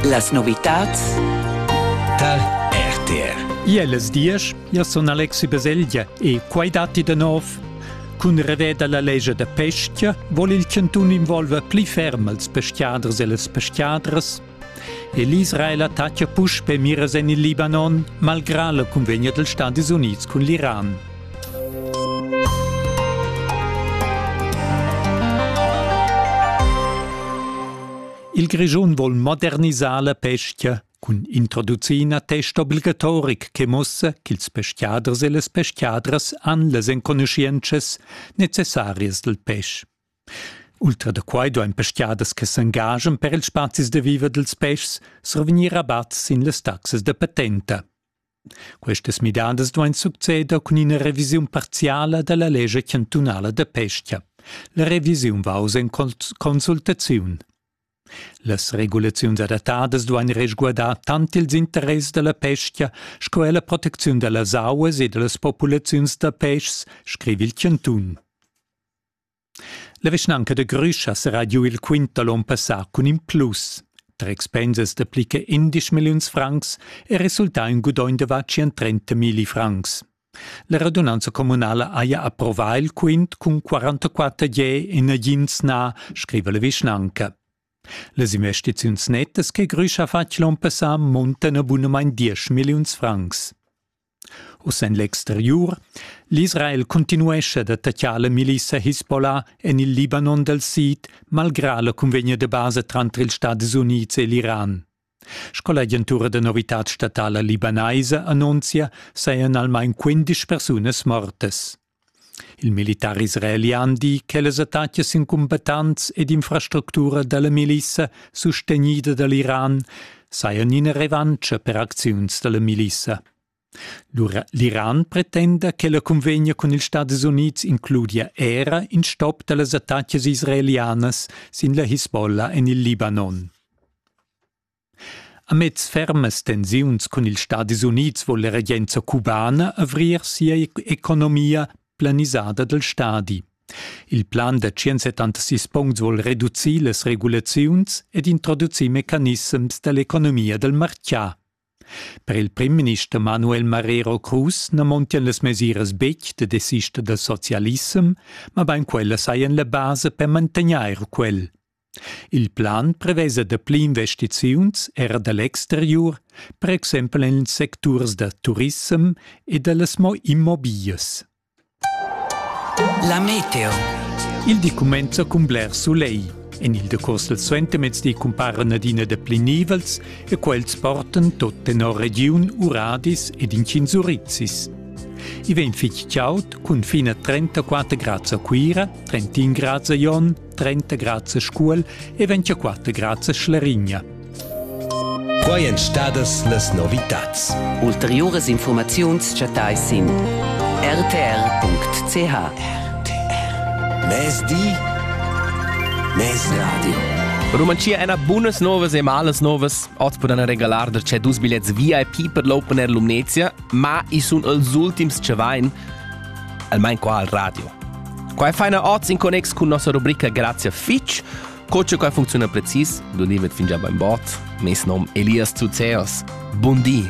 Las novitads tar RTR. Iellas diesch, io sun Alexi Baselgia e quai datti da nov. Cun rever da la legia da pestia vol il chantun involver pli ferm als peschiaders e las peschiadras. E l'Israel attacca puspe miras en il Libanon, malgrà la cunvegna dels Stati Units cun l'Iran. Il Grischun vol modernisar la pestia cun introducir ina test obligatoric che muossa ch'ils peschiaders e las peschiadras han las enconuschientschas necessarias dal pesch. Ultra da quai duain peschiaders che s'engagian per ils spazis da viver dals peschs survegnir rabat sin las taxas da patenta. Questas midadas duain succeder cun ina revisiun parziala da la lescha chantunala da pestga. La revisiun va oz en consultaziun. Las regulaziuns adattadas duain resguardar tant ils interess da la pestga sco er la protecziun da las auas e da las populaziuns da peschs, scriva il chantun. La vischnanca da Grüsch serà giu il quint da l'on passà cun in plus. Tre expensas da pli che 11 milliuns francs è resultà in gudogn da va 130 milli francs. La radunanza communala haja approvà il quint cun 44 je e nagins na, scriva la vischnanca. Las investiziuns nettas che Grüsch ha fatg l'on passà muntan a bunamain 10 milliuns francs. Uss en l'exteriur. L'Israel cuntinuescha da tatschar la milissa Hisbollah en il Libanon dal sid, malgrà la cunvegna da basa tranter ils Stadis Unids e l'Iran. Sco l'agentura da novitad statala libanaisa annunzia, sajan almain quindisch persunas mortas. Il militar israeli ha di che las attacas incumbattants ed infrastructura dalla milissa sustegnida dall'Iran sajan ina revantscha per acziuns dalla milissa. L'Iran pretenda che la cunvegna cun ils Stadis Unids includia era in stop dallas attacas israelianas sin la Hisbollah en il Libanon. Amez fermas tensiuns cun ils Stadis Unids vul la regenza cubana avrir sia economia planisada dal stadi. Il plan da 176 puncts vuol reducir las regulaziuns ed introducir mecanissems da l'economia dal marchà. Per il primminister Manuel Marrero Cruz na montian las mesiras betg da desista dal socialissem, ma bain quellas sajan la basa per mantegnair quel. Il plan prevesa dapli investiziuns era da l'exteriur, per exempel en ils secturs da turissem e da las mo immobiglias. La meteo. Il di cumenza cun bler sulegl. En il decurs del suentermezdi cumparan adina dapli nivels e quels portan tot tenor regiun Uradis ed incins Urizis. I vegn fitg chaud cun fin a 34 grads a Cuira, 31 grads a Jon 30 grads a Scuol e 24 grads a Schlerigna. Quai èn stadas las novitads. Ulteriuras informaziuns chattais sin rtr.ch. RTR. Mezdi, Mezradio. Rumantschia è una buonas novas e malas novas. Oz poden regalar da c'è dus biglietti VIP per l'Open Air Lumnezia, ma i sun els ultims che vain. almain qua al radio. Qua è faina oz in connex cun nossa rubrica Grazia fitch. Co che qua funcziona precis, l'unimet fin già bain bot. Mes nom Elias Zuzeos. Buondì!